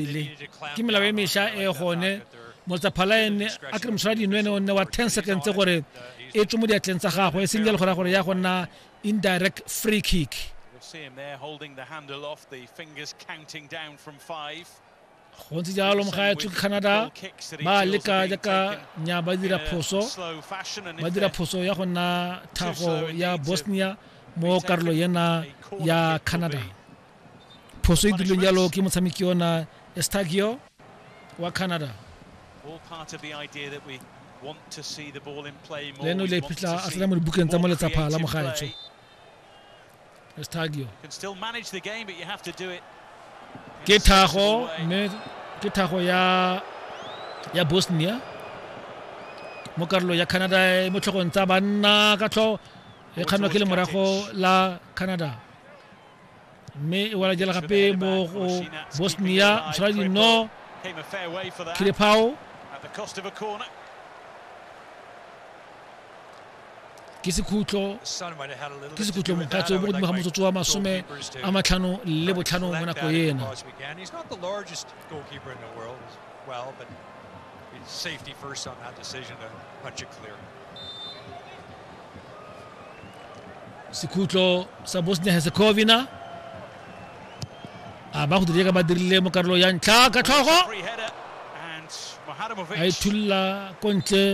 le ke melao e mesha e gone motsaphalaene a kry moshwara dinwene o nne wa 10 seconds gore e tswe mo diatleng tsa gagwe e seng jalo gore gore ya go nna indirect free kick go ntse jalo mogaetsho ke canada ba leka jaaka nya ba dira phoso ba dira phoso ya go nna thago ya bosnia mo karolo yena ya canada phoso e dirileng jalo ke motshameki ona estagio wa canada leno le phitlha a tsena mo dibukeng tsa mo letsapha la mogaetsho estagio ke thago mme ke thago ya ya bosnia mo karolo ya canada e mo tlhogong tsa banna ka tlho e kganwa ke le morago la canada mme e wala jela gape mo go bosnia mosadi no khirepao ke sekhutlo ke sekhutlo mokgatso mo godimo ga motsotso wa masome a matlhano le botlhano mo nako ena It's safety first on that decision to punch it clear. sekhutlo sa bosnia herzegovina a ba go dira ka ba dirile mo karolo ya ntlha ka tlhogo a ithulla ko ntle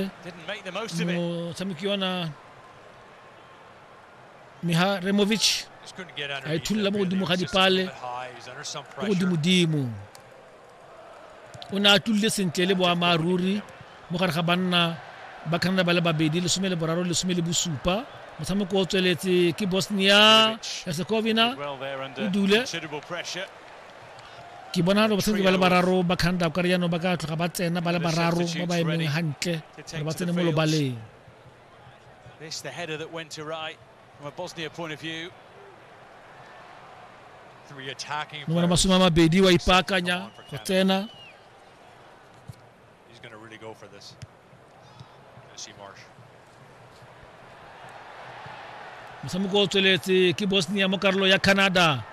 motshameki yona miha removic a ithulla mo godimo ga dipale ko godimodimo o ne a tlulile sentle le boammaaruri mo gare ga banna ba canada ba le babedi lesome le boraro lesome le bosupa motshameko o tsweletse ke bosnia herzegovina e dule ke bona gore batshameki ba le bararo ba canada o kare jaanong ba ka tloga ba tsena ba le bararo ba ba emeng gantle gore ba tsene mo lobaleng mongwe na masome a mabedi wa ipaakanya go tsena motshameko o tsweletse ke bosnia mo karolo ya canada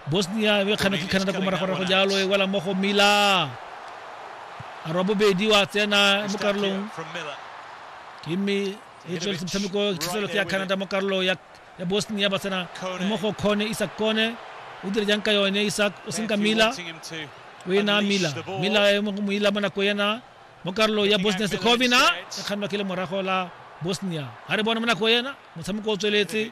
bosnia e kgana ke canada ko moragorago jalo e wela mo go mila arwa bobedi wa tsena mo karolong ke e tsweletse motshameko thitselotse ya canada mo karolo ya ya bosnia ba tsena mo go kgone isak kone o dire jang ka yone isak o seng ka mila o ena mila mila e mo moila mo nako ena mo karolo ya bosnia sekovina e kgannwa ke le morago la bosnia ga re bone mo nako ena motshameko o tsweletse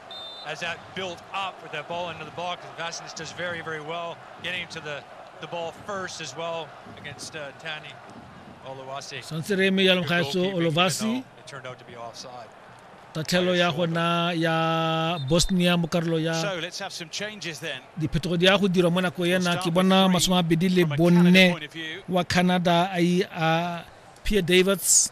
as that built up with that ball into the box, Vasilis does very, very well getting to the, the ball first as well against uh, Tani Olowasi. Santse re eme jalo ga eso Olowasi. It turned out to be offside. tatlhelo ya gona ya bosnia mo karolo ya diphetogo di ya go dirwa mo nako ena ke bona masome a mabedi le bonne wa canada a pia davids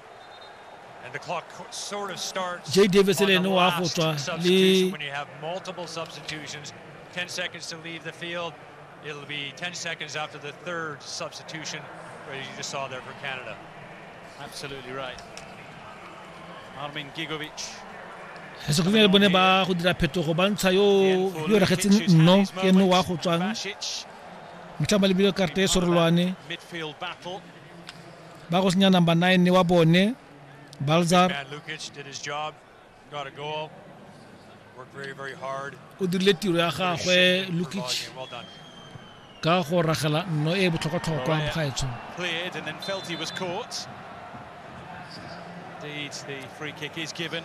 Jay Davis le ene wa go tswa le It'll be 10 seconds after the third substitution where you just saw there for Canada. Absolutely right. Armin Gigovic. Segovinyane bone ba go dira phetogo ba ntsha yo yo regetseng nno ke nno wa go tswang. Mtlha malebile karte e sorolwane. ba go senya number nine wa bone balzar o dirile tiro ya gagwe lukic ka go ragela nno e botlhokwatlhokwa bagaetsho Indeed, the free kick is given.